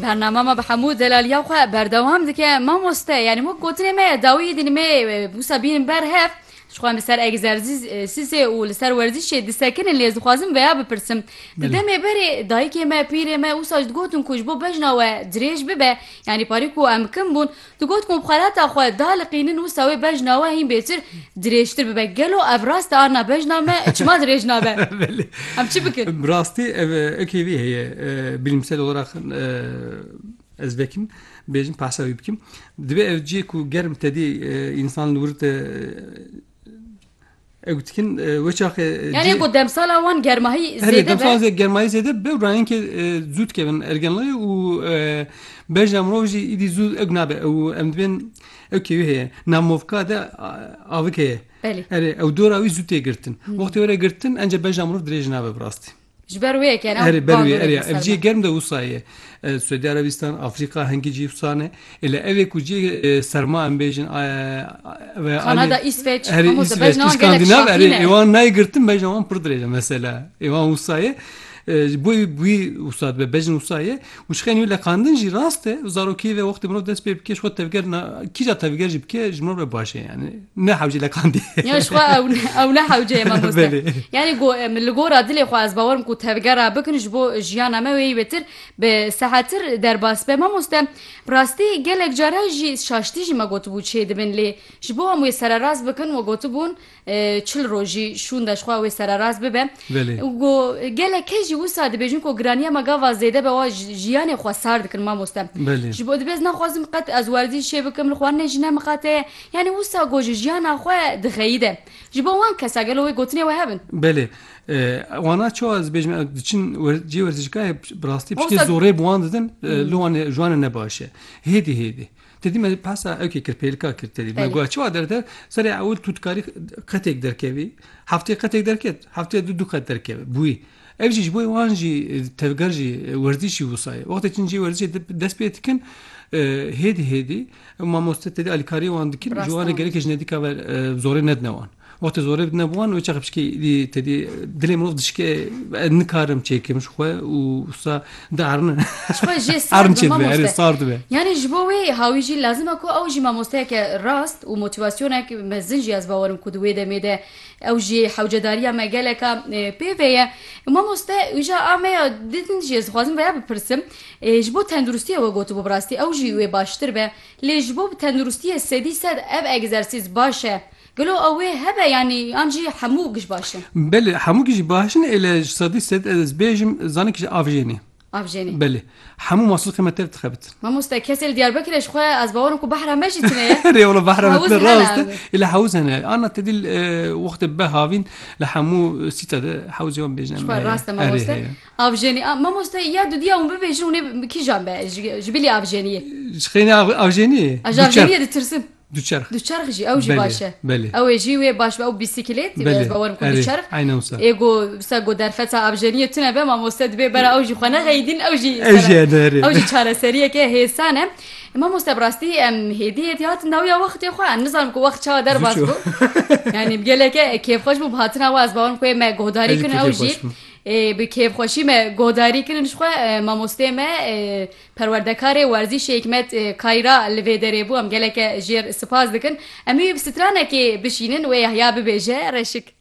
Bernama me bi hemû delaliya xwe berdewam dike mamoste yanî wek gotinê me ye dawiyê dînî me wisa bînin ber hev ji xwe li ser egzersîzê û li ser werzîşê disekinin lê ez dixwazim veya bipirsim di demê berê dayikê me pîrê me wisa ji digotin ku ji bo bejna we dirêj bibe yanî parî ku em kim bûn Digot ku xwelata xwe da li qînin û sawê bejna we hîn bêtir dirêjtir bibe. Gelo ev rast e arna bejna me çima dirêj nabe? Em çi bikin? Bi rastî ev ekê vê heye bilîmsel olarak ez vekim bêjim behsa wî bikim. Divê ev cihê ku germ tedê însan li wir te Ew dikin wê çaxê Yani ku demsala wan germahî zêde be. Demsala zê germahî zêde be û rayên ki zû dikevin ergenliyê û bejna mirov jî îdî zû ew nabe ew em dibên ew kêwî heye namovka de avik heye. Erê ew dora wî zû tê girtin. Wextê were girtin ence bejna mirov dirêj nabe bi rastî. Ji ber wê kere Erê ber wê erê ev ciyê germ de wisa ye. Suudi Arabistan, Afrika hingî cî wisa ne. Êle ev ê ku ciyê serma em bêjin Kanada, İsveç, erê İsveç, Skandinav erê êwan nayê girtin bejna wan pir dirêj e mesela. Êwan wisa ye. Ji bo wî wisa dibe bejn wisa ye. Wişxên wî leqandin jî rast e. Zarokiyê ve wextê mirov dest pê bike ji xwe tevger na kîja tevger jî bike ji mirov re baş e yani ne hewcê leqandê. Ya ji xwe ew ew ne hewce ye mamoste. Yani go min li gora dilê xwe ez bawer ku tevgera bikin ji bo jiyana me wê wêtir bi sehetir derbas be mamoste bi rastî gelek cara jî şaştî jî me gotibû çê dibin lê ji bo em wê sererast bikin we gotibûn çil rojî şûnde ji xwe wê sererast bibe û ku gelek kes jî wisa dibêjin ku giraniya me gava zêde be wa jiyanê xwe sar dikin mamoste ji bo dibêz naxwazim qet ez werzîşê bikim li xwarinê jî ne miqate ye yanî wisa ku ji jiyana xwe dixeyide ji bo wan kesa gelo wê gotinê we hebin Belê wana çawa ez bêjim ew diçin cê werzîşgahê bi rastî piştê zorê bi wan didin li wan ji wan re ne baş e hêdî hêdî Tedî me pesa ewkê kir pêlka kir tedî me got çiwa derde serê ewil tu dikarî qetêk derkevî heftê qetêk derket heftê du du qet derkeve bûyî ev jî ji bo wan jî tevger jî werzîşî wusayê wextê çin jî werzîşê dest pê dikin hêdî hêdî mamoste tedî alîkariyê wan dikin ji wan re gerekê ji nedîka ve zorê nedine wan. Wextê zorê bi dina wan û çaxê piçikê êdî tedî dilê mirov dişike ez nikarim çêkim ji xwe û usta di erine. Ji xwe jê sar dibe mamoste. Sar dibe. Yanî ji bo wê hawî jî lazim e ku ew jî mamosteyeke rast û motivasyonek mezin jî ez bawer im ku di wê demê de ew jî hewcedariya me geleka pê ve ye. Mamoste îja a me ya din jî ez dixwazim veya bipirsim ji bo tenduristiyê we gotibû bi rastî ew jî wê baştir be lê ji bo bi tenduristiyê sedî sed ev egzersîz baş e. Gelo ew wê hebe yanî an jî hemû gij baş in? Belê hemû gij jî baş in êle ji sedî sed ez bêjim zanîn kij avjênê. Avjênê. Belê. Hemû masilxê me tev dixebitin. Mamoste kesê li Diyarbekirê ji xwe ez bawer im ku behra me jî tune ye. Rê wala behra me tune rast e. Êle hewz hene. Anna tedî wextê beh havîn li hemû sîta de hewzê wan bêjin em. Ji xwe rast e mamoste. Avjênî a mamoste ya dudiya hûn bibêjin hûnê kijan be ji bilî avjêniyê. Ji xênî avjêniyê? Ji avjêniyê ditirsim. Duçerx. Duçerx jî ew jî baş e. Belê. Ew ê jî wê baş be ew bîsîkilêt dîbe ez bawer bikim duçerx. Eyna wisa. Ê ku wisa ku derfeta avjeniyê tune be mamoste dibê bera ew jî xwe nexeyîdîn ew jî Ew jî hene herê. Ew jî çareseriyeke hêsan e. Mamoste bi rastî em hêdî hêdî hatin dawiya wextê xwe em nizanim ku wext çawa derbas bû. Yanî bi geleke kêfxweş bû bi hatina we ez bawer bikim wê me guhdarî kirin ew jî. Ê bi kêfxweşî me guhdarî kirin jixwe mamosteyê me Perwerdekarê werzîşê Hikmet Kayra li vê derê bû. Em geleke jêr spas dikin. Em ê wê bi stranekê bişînin wê yahya bibêje reşik.